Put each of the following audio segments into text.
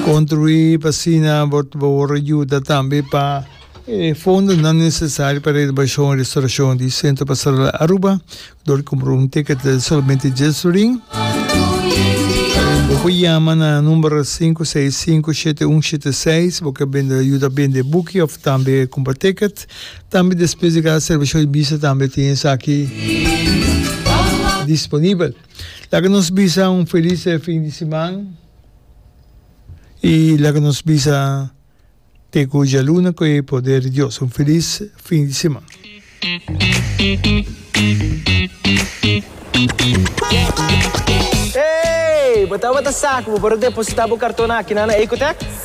Construi pa asina bo ta por yuda tambe pa e fondonan necesario pa renovacion y restauracion di Centro Pastoral Aruba, dor di compra un ticket den solamente dies florin. Bo por yama na number sinku seis sinku shete un shete seis, bo ke bende yuda bende buki of tambe compra ticket. Tambe despues di cada servicio di misa tambe tin esaki disponibel. Laga nos bisa un felis fin di siman i laga nos bisa te ku djaluna ku e poder di Dios un felis fin di siman. Ey, bo tabata sa ku bo por a depositá bo karton akí na Ecotech?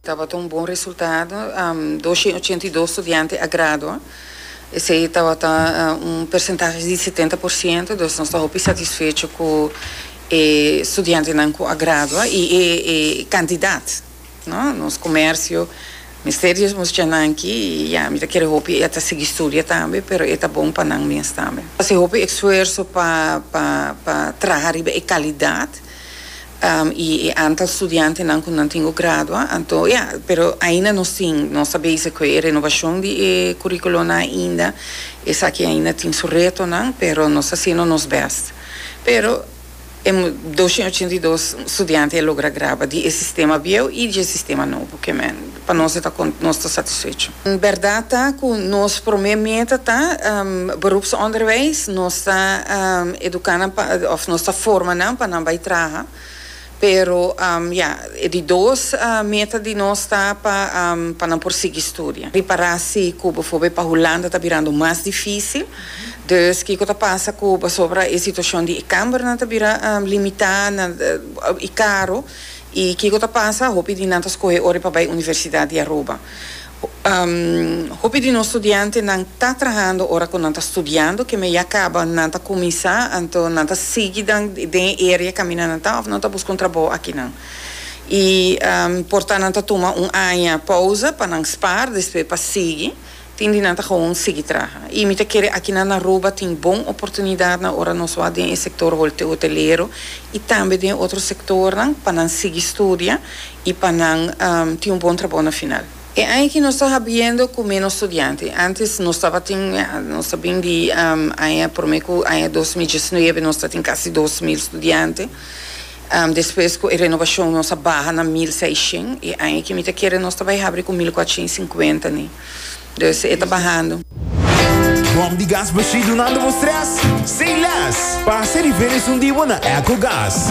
Tabata un bon resultado, dos shen ochenta i dos studiante a gradua, esei tabata un persentahe di setenta por siento, dus nos ta hopi satisfecho ku e studiantenan ku a gradua i e kandidat. Nos komersio mester di e muchachanan aki i ya, mi ta kere hopi e ta sigui studia tambe, pero e ta bon pa nan mes tambe. Hasi hopi esfuerso pa traha riba e kalidat. i e antal studiantenan ku nan tin ku gradua, anto ya, pero ainda nos tin, nos ta bezig ku e renobashon di e kurikulonnan ainda, esaki ainda tin su retonan, pero nos ta hasiendo nos bèst. Pero, e doshen ochenta i dos studiante a logra gradua di e sistema bieu i di e sistema nobo, ke men. Pa nos e ta con nos ta satisfecho. Berdad ta cu nos prome meta ta Beroepsonderwijs, nos ta educa nan pa of nos ta forma nan pa nan bay traha, pero ya, e di dos meta di nos ta pa pa nan por sigui studia. Di para si cu befo-be pa Hulanda ta birando mas dificil, dus kico ta pasa cu pasobra e situacion di e cambernan ta bira limita nan y caro, I kiko ta pasa? Hopi di nan ta skohe ora e pa bai Universidat di Aruba. Hopi di nos studiantenan ta trahando ora ku nan ta studiando, keme ya kaba nan ta kuminsá, anto nan ta sigui dan den e area kaminda nan ta òf nan ta buska un trabou akinan? I por ta nan ta tuma un aña pousa pa nan spaar, despues pa sigui. Tin di nan ta gewoon sigui traha. I mi ta kere aki na Aruba tin bon oportunidatnan ora nos wak den e sektor hotelero i tambe den otro sektornan pa nan sigui studia i pa nan tin un bon trabou na final. E aña aki nos ta habiendo ku ménos studiante. Ántes nos tabatin, nos ta bin di aña promé ku aña dos mil diesnuebe nos ta tin kasi dos mil studiante. Despues cu e renovacion nos a baha na mil seishen y aña ki mi ta kere nos ta bay habri cu mil cuatrocien cincuenta ni. Dus e ta bahando. Bom di gas Bashir dunando bo stress? Say less! Pasa e review esun di bo na Ecogas.